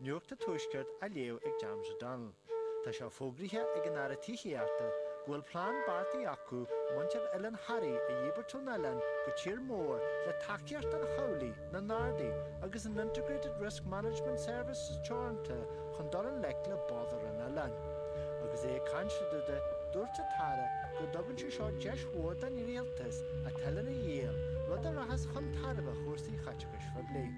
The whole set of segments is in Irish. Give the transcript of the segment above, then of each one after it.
Nuacht an Tuaiscirt á léamh ag James O'Donnell. Tá sé fógraithe ag an Aire Tithíochta go bhfuil plean beartaithe acu muintir Oileán Thoraí a dhíbirt ón oileán go tír mór le tacaíocht an chabhlaigh, na nGardaí agus an Integrated Risk Management Services Teoranta chun dul i ngleic le bodhar an oileáin. Agus é ag caint de, dúirt an tAire go dtugann sé seo deis mhór don Rialtas an t-oileán a dhíol, rud a rachas chun tairbhe chúrsaí chaiteachais phoiblí.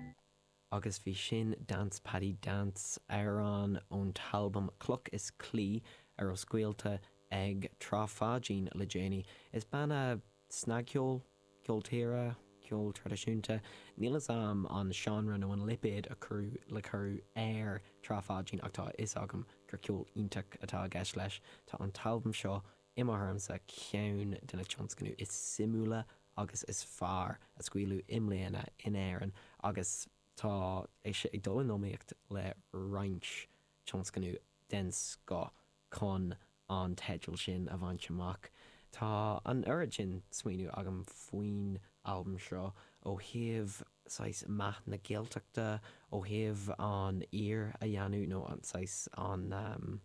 Agus bhí sin, Dance Paddy Dance, amhrán ón t-albam Cloch is Claí, ar os scaoilte ag Trá Pháidín le déanaí. Is banna snagcheoil, ceol tíre, ceol traidisiúnta, níl fhios a'm an seánra nó an lipéad a chur le cur ar Trá Pháidín ach tá fhios agam gur ceol iontach atá i gceist leis. Tá an t-albam seo I mo thuairimse, ceann de na tionscnaimh is suimiúla agus is fearr a scaoileadh i mbliana in Éirinn agus tá sé ag dul in iomaíocht le roinnt tionscnamh den scoth chun an teideal sin a bhaint amach. Tá an oiread sin smaoineamh agam faoin albam seo, ó thaobh saghas meath na Gaeltachta, ó thaobh an aoir a dhéanamh nó saghas an.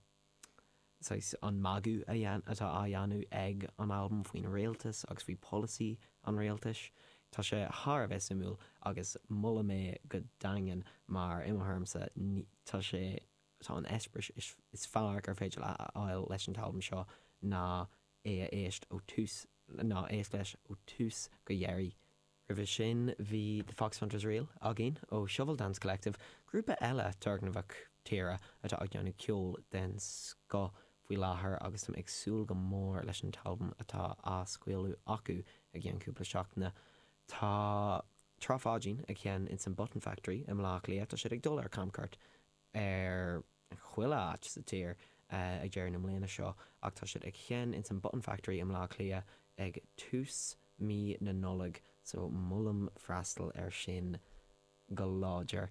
saghas, an magadh a dhein, atá á dhéanamh ag an albam faoin Rialtas agus faoi polasaí an Rialtais. Tá sé thar a bheith suimiúil agus molaim é go daingean mar, i mo thuairimse, ní, tá sé, tá an eispéireas is fearr gur féidir leat a fháil leis an t-albam seo ná é a éist ó tús, ná éist leis ó tús go dheiridh. Roimhe sin bhí The Foxhunters Reel againn ó Shovel Dance Collective, grúpa eile turgnamhach tíre atá ag déanamh ceol den scoth faoi láthair agus táim ag súil go mór leis an t-albam atá á scaoileadh acu i gceann cúpla seachtaine. Tá Trá Pháidín ag seinm ins an Button Factory i mBleá Cliath, tá siad ag dul ar camcuairt ar chuile áit sa tír ag deireadh na mbliana seo ach tá siad ag seinn ins an Button Factory i mBleá Cliath ag tús mí na Nollag so molaim freastal ar sin go láidir.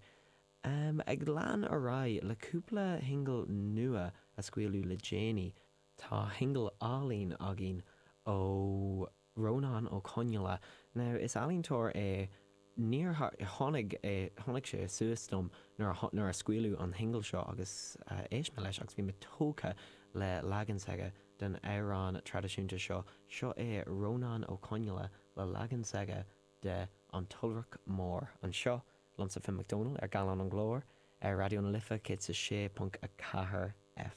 Ag lean ar aghaidh le cúpla shingil nua a scaoileadh le déanaí, tá shingil álainn againn ó. Rónán Ó Conghaile, Now is ealaíontóir é níor tháinig é tháinig sé suas dom nuair a nuair a scaoileadh an singil seo agus éist mé leis agus bhí mé tógtha le leagan s'aige den amhrán traidisiúnta seo, seo é Rónán Ó Conghaile le leagan s'aige de 'An tIolrach Mór' anseo liomsa Finn McDonald ar Gallán an Ghlóir ar Raidió na Life 106.4 F.